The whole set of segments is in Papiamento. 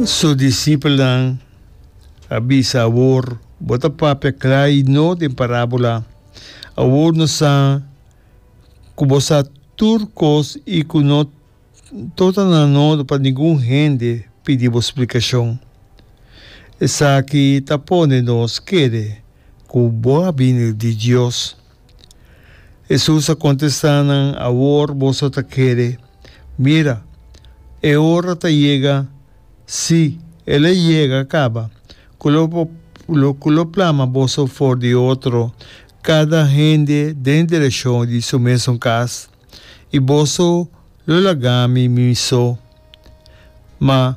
Su disipelnan a bisa, Awor bo ta papia kla i no den parábola. Awor no sa ku bo sa tur kos i ku no torna nan nodig pa ningun hende pidi bo splikashon. Esaki ta pone nos kere ku bo a bini di Dios. Hesus a kontestá nan, Awor boso ta kere. Mira, e ora ta yega, sí, el a yega kaba, ku lo bo, lo, ku lo plama boso for di otro, kada hende den direshon di su mesun kas. i boso lo laga mi mi so, ma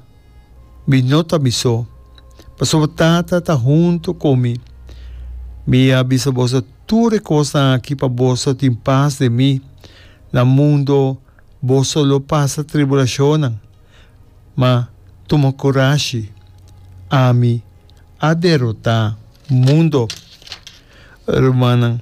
mi no ta mi so, pasobra Tata ta huntu ku mi. Mi a bisa boso tur e kosnan aki pa boso tin pas den mi. Na mundu boso lo pasa tribulashonnan, ma tuma kurashi, ami a derotá mundu. Rumannan.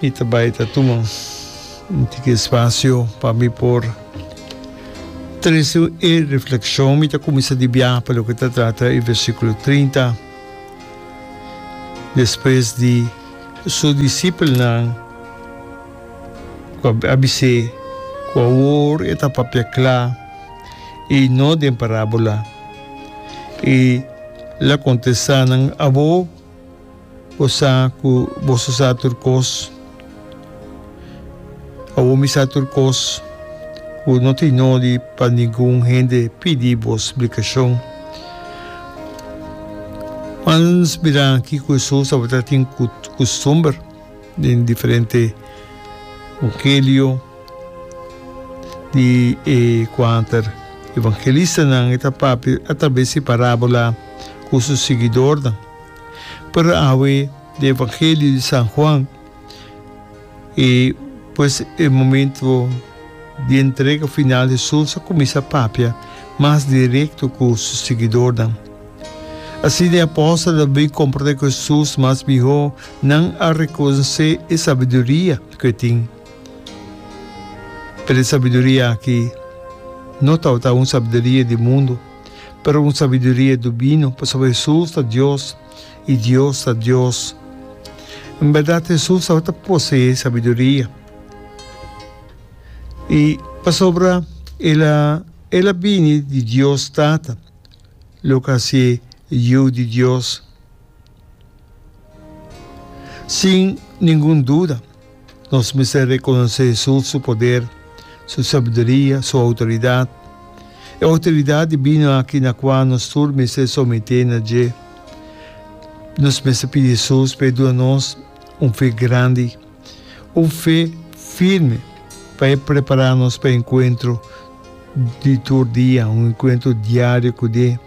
Mi ta bai ta tuma un tiki espasio pa mi por trese e reflekshon. Mi ta kuminsá di biaha pa loke ta trata e versíkulo trinta, Despues di Su disipelnan ku a bis'é ku awor e ta papia kla i no den parábula, E la kontestá nan, Abo, Bo sa ku boso sa tur kos. Awor mi sa tur kos ku no tin nodi pa ningun hende pidi bo splikashon. Mans mira kiko Hesus tabata tin kustumber den diferente evangelio di e kuanter evangelistanan. E ta papia atraves di parábola ku su siguidornan. Pero awe di Evangelio di San Juan, i pues e momento di entrega final Hesus a cuminsa papia mas directo cu su siguidornan. Asina e apostelnan a bin comprende cu Hesus mas miho, nan a reconoce e sabiduria cu e tin. Pero e sabiduria aki no tabata un sabiduria di mundo. pero un sabiduria dubino, pasobra Hesus ta Dios i Dios ta Dios. En bèrdat, Hesus tabata poseé sabiduria, i pasobra el a el a bini di Dios Tata, loke a hasié Yu di Dios. Sin ningun duda, Nos mester rekonosé Jesús su poder, su sabiduria, su outoridat. E outoridat dibino aki na kua nos tur mester someté na dje. Nos mester pidi Jesús pa e duna nos un fe grandi, un fe firme pa e prepará nos pa e enkuentro di tur dia, un enkuentro diario ku e,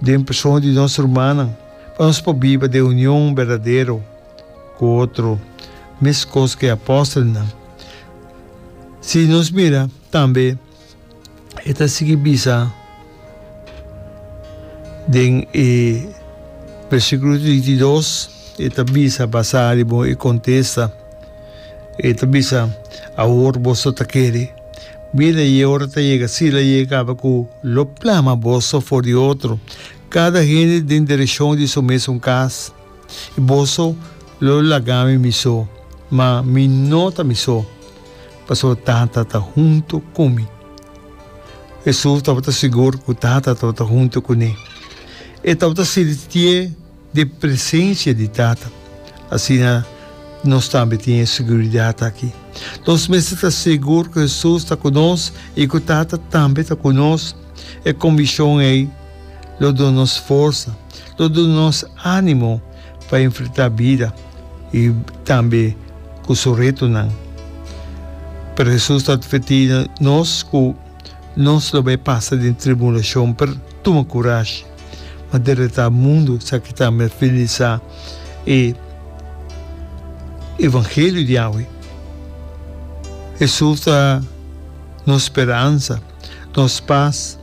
den persona di nos rumannan, pa nos por biba den union berdadero. ku otro meskos ku e apòstelnan. Si nos mira tambe e ta sigui bisa den e versikulo trinta i dos, e ta bisa basá riba un e kontesta, e ta bisa, Awor boso ta kere. Bira, i e ora ta yega, si lo yega kaba ku lo plama boso for di otro, kada hende den direshon di su mesun kas. I boso lo laga mi miso, ma mi no ta miso, pasobra Tata ta huntu ku mi. Hesus tabata sigur ku Tata tabata huntu kuné. E tabata sintié den presensia di Tata. Asina nos tambe tin e siguridat aki. Nos mester ta sigur ku Hesus ta ku nos i ku Tata tambe ta ku nos. E konbikshon ei lo duna nos forsa. lo duna nos ánimo pa enfrentá bida i tambe ku su retonan. Pero Hesus ta advertí nos ku nos lo bai pasa den tribulashon, pero tuma kurashi, m'a deretá mundu sa ki ta mervelisá e evangelio di awe. Hesus ta nos speransa. nos pas.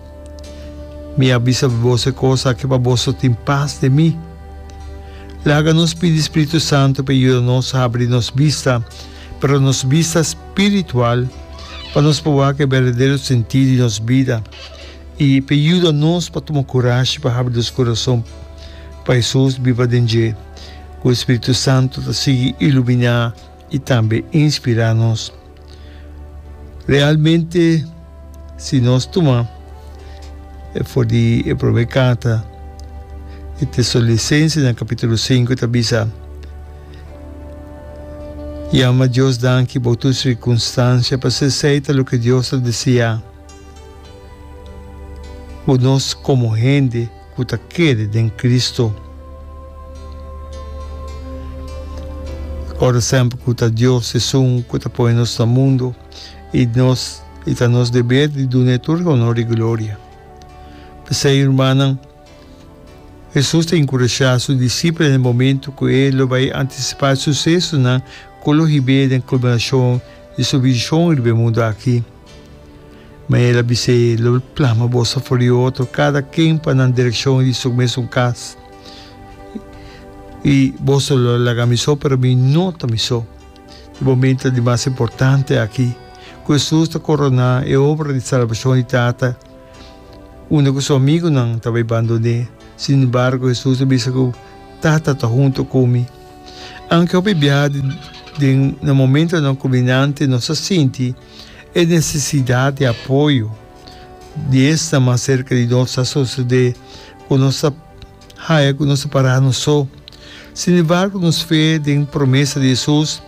Mi a bisa boso e kos aki pa boso tin pas den mi. Laga nos pidi Spiritu Santu pa e yuda nos habri nos bista, pero nos bista spiritual, pa nos por wak e berdadero sentí di nos bida i p'e yuda nos pa tuma kurashi pa habri nos kurason pa Hesus biba den dje ku e Spiritu Santu ta sigui iluminá. i tambe inspirá nos. Realmente si nos tuma for di e promé carta di Tesalonicensenan capítulo sinku ta bisa, Yama Dios danki bou tur circunstancia, pasobra esei ta loke Dios ta deseá bo nos como hende. ku ta kere den Kristu. Ora semper ku ta Dios esun ku ta pone nos na mundu, i nos i ta nos deber di duna e tur honor i gloria. P'esei, rumannan, Hesus ta enkurashá su disipelnan den momentu ku e lo bai antisipá e susesonan ku lo hib'é den kulminashon di su vishon riba e mundu aki. Ma el a bis'é, Lo plama bos afó di otro, kada ken pa nan direkshon di su mesun kas. I boso lo laga mi so, pero mi no ta mi so. E momentu di mas importante aki, ku Hesus ta koroná e obra di salbashon di Tata, unda ku su amigunan ta bai bandon'é. Sin embargo, Hesus a bisa ku, Tata ta huntu ku mi. Aunke hopi biaha den na momentunan kuminante nos a sinti, e nesesidat di apoyo di esnan mas serka di nos ta sosodé ku nos ta haña ku nos ta pará nos so. Sinembargo, nos fe den promesa di Hesus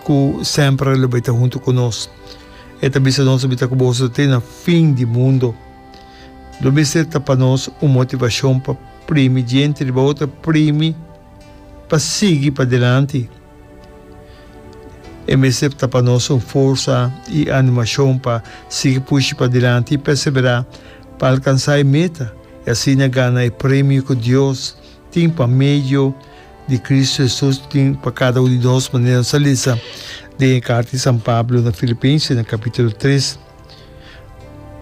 ku semper lo bai ta huntu ku nos, e ta bisa nos, Mester ku boso te na fin di mundu. Lo mester ta pa nos un motivashon pa primi djente riba otro, primi pa sigui padelanti. E mester ta pa nos un forsa i animashon pa sigui pushi padilanti i perseverá pa alkansá e meta i asina gana e premio ku Dios tin pa medio di Kristu Hesus. Tin pa kada un di nos manera nos a lesa den e karta di San Pablo na Filipense na kapitulo tres.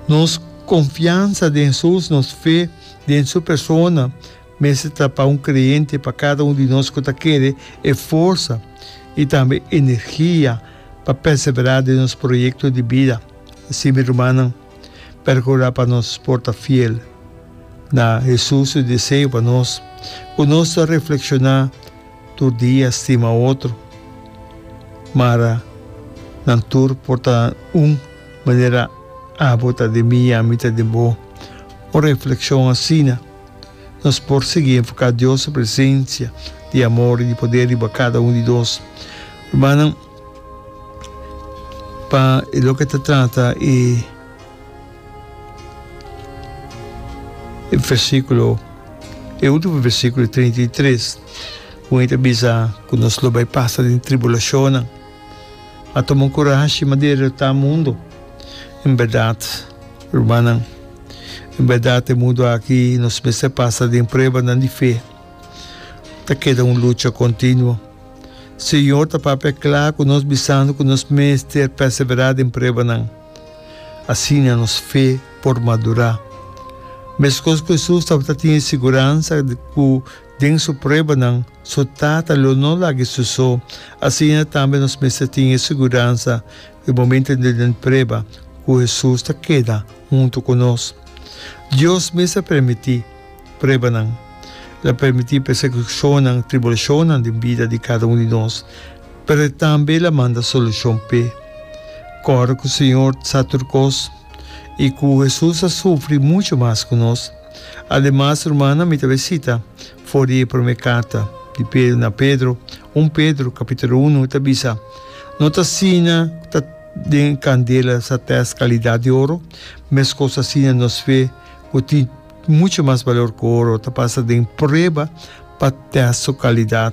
Nos konfiansa den Hesus, nos fe den su persona, Mester ta pa un creyente pa cada un di nos cu ta kere e forsa y tambe energia pa persevera den nos proyecto di bida. Así mi rumannan, percura pa nos por ta fiel na Jesús su deseo pa nos, cu nos ta reflexiona tur dia stima otro, mara nan tur por ta un, manera Abo ta den mi y ami ta den bo. Un reflexion asina. Nos por sigui enfoká Dios su presensia di amor i di poder riba kada un di nos. Rumannan, pa e loke ta trata e versíkulo, e último versíkulo di treinta i tres, un e ta bisa ku nos lo bai pasa den tribulashonnan. A tuma kurashi ma dereritá mundu. En bèrdat, rumannan, en bèrdat e mundu aki nos mester pasa den pruebanan di fe. Ta keda un lucha kontinuo. Señor ta papia kla ku nos bisando ku nos mester pèseverá den pruebanan. Asina nos fe por madurá. Meskos ku Hesus tabata tin e siguransa ku den su pruebanan, Su tata lo no lag'e su so. Asina tambe nos mester tin e siguransa ku e momentunan den prueba ku Hesus ta keda huntu ku nos. Dios mes a permití pruebanan. El a permití persekishonnan, tribulashonnan den bida di kada un di nos, pero e tambe el a manda solushon p'e. Kòrda ku Señor sa tur kos i ku Hesus a sufri muchu mas ku nos. Ademas, rumannan, mi ta bisita. For di e promé carta di Pedro na Pedro, un Pedro, capítulo uno, e ta bisa, No ta asina cu ta den e candela sa test calidad di oro, mescos asina nos fe, cu tin mucho mas balor cu oro, ta pasa den prueba pa test su calidad.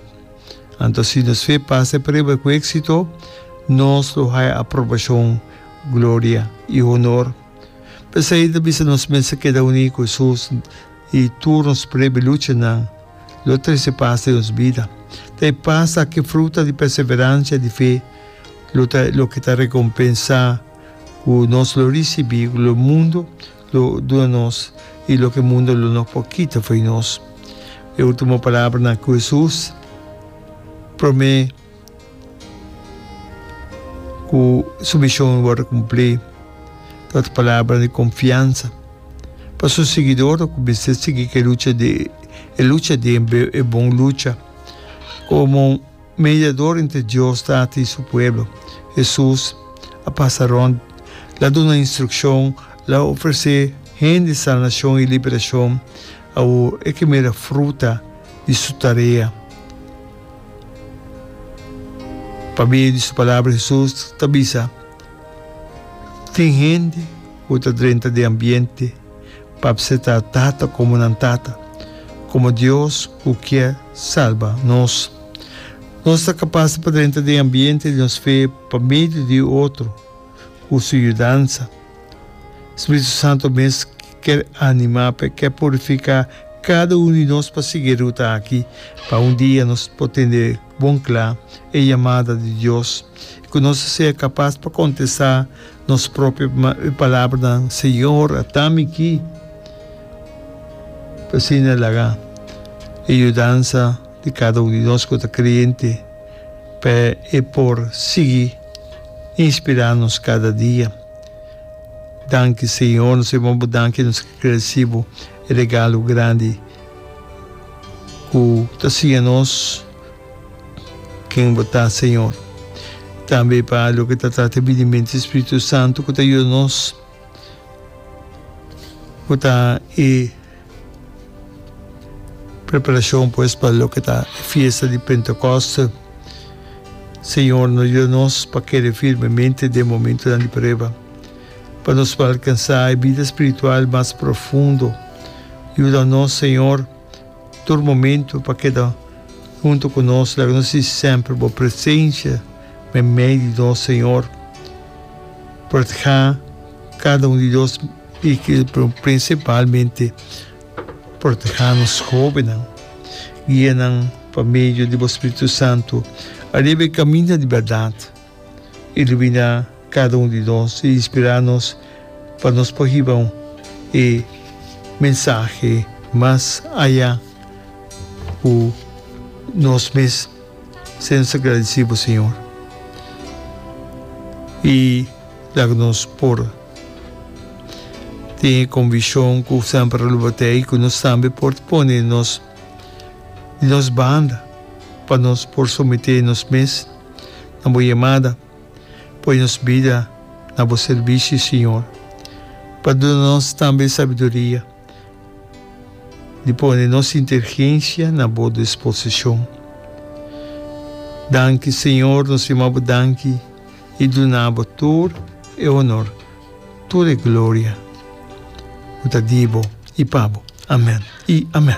Anto si nos fe pasa e prueba cu éxito, nos lo haya aprobacion, gloria i honor. P'esei e ta bisa nos mester keda uní cu Jesús, I tur nos prebe luchanan lo trese pas den nos bida. Ta e pas akí fruta di perseveransha di fe lo ta loke ta rekompensá ku nos lo risibí, ku lo mundu lo duna nos i loke mundu lo no por kita fo'i nos. E último palabranan ku Hesus promé. Ku su mishon wòrdu kumplí, ta ot palabra di konfiansa pa su siguidornan ku mester sigui ku e lucha di e lucha di e bon lucha. Komo mediador entre Dios Tata i su pueblo, Hesus a pasa rònt, el a duna instrukshon, el a ofresé hende sanashon i liberashon. Awor e ke mira fruta di su tarea. Pa medio di su palabra Hesus ta bisa, Tin hende ku ta drenta den ambiente pa pseta Tata komo nan Tata, komo Dios ku kier salba nos. Nos ta kapas pa drenta den ambiente di nos fe pa medio di otro. Ku su yudansa, Spiritu Santu mes kier animá p'e kier purifiká kada unu di nos pa sigui e ruta aki, pa un dia nos por tende bon kla e yamada di Dios i ku nos a sea kapas pa kontestá nos propio palabranan, Señor, ata mi ki. Asina laga e yudansa di kada unu di nos ku ta kreyente. p'e e por sigui inspirá nos kada dia. Danki Señor, nos ta bini bo danki, nos ta gradesí bo e regalo grandi ku ta siña nos ken bo ta, Señor. Tambe pa loke ta trata e binimenta di e Spiritu Santu ku ta yuda nos, ku ta e. Preparashon pues pa loke ta e fiesta di Pentekoste. Señor no yu nos pa kere firmemente den e momentunan di prueba. Pa nos por alkansá e bida spiritual mas profundo, yuda nos Señor tur momentu pa keda huntu ku nos. Laga nos sinti semper Bo presensia meimei di nos, Señor. Por ta kada un di nos. Y ki principalmente proteha nos jovennan, guia nan pa medio di bo Spiritu Santu ariba e caminda di berdad. Ilumina cada un di nos y inspira nos pa nos por hiba e mensahe mas aya cu nos mes. Ser nos agradesí bo Señor i laga nos por tin e konvishon ku semper a lub'at'é i ku nos tambe por ta pone nos di nos banda pa nos por someté nos mes na bo yamada. Poi nos bida na bo sirbishi Señor pa duna nos tambe sabiduria. di pone nos intergensia na bo disposicion. Danki Señor, nos yama bo danki y duna bo tur e honor, tur e gloria cu ta di bo y pa bo. Amen y amen.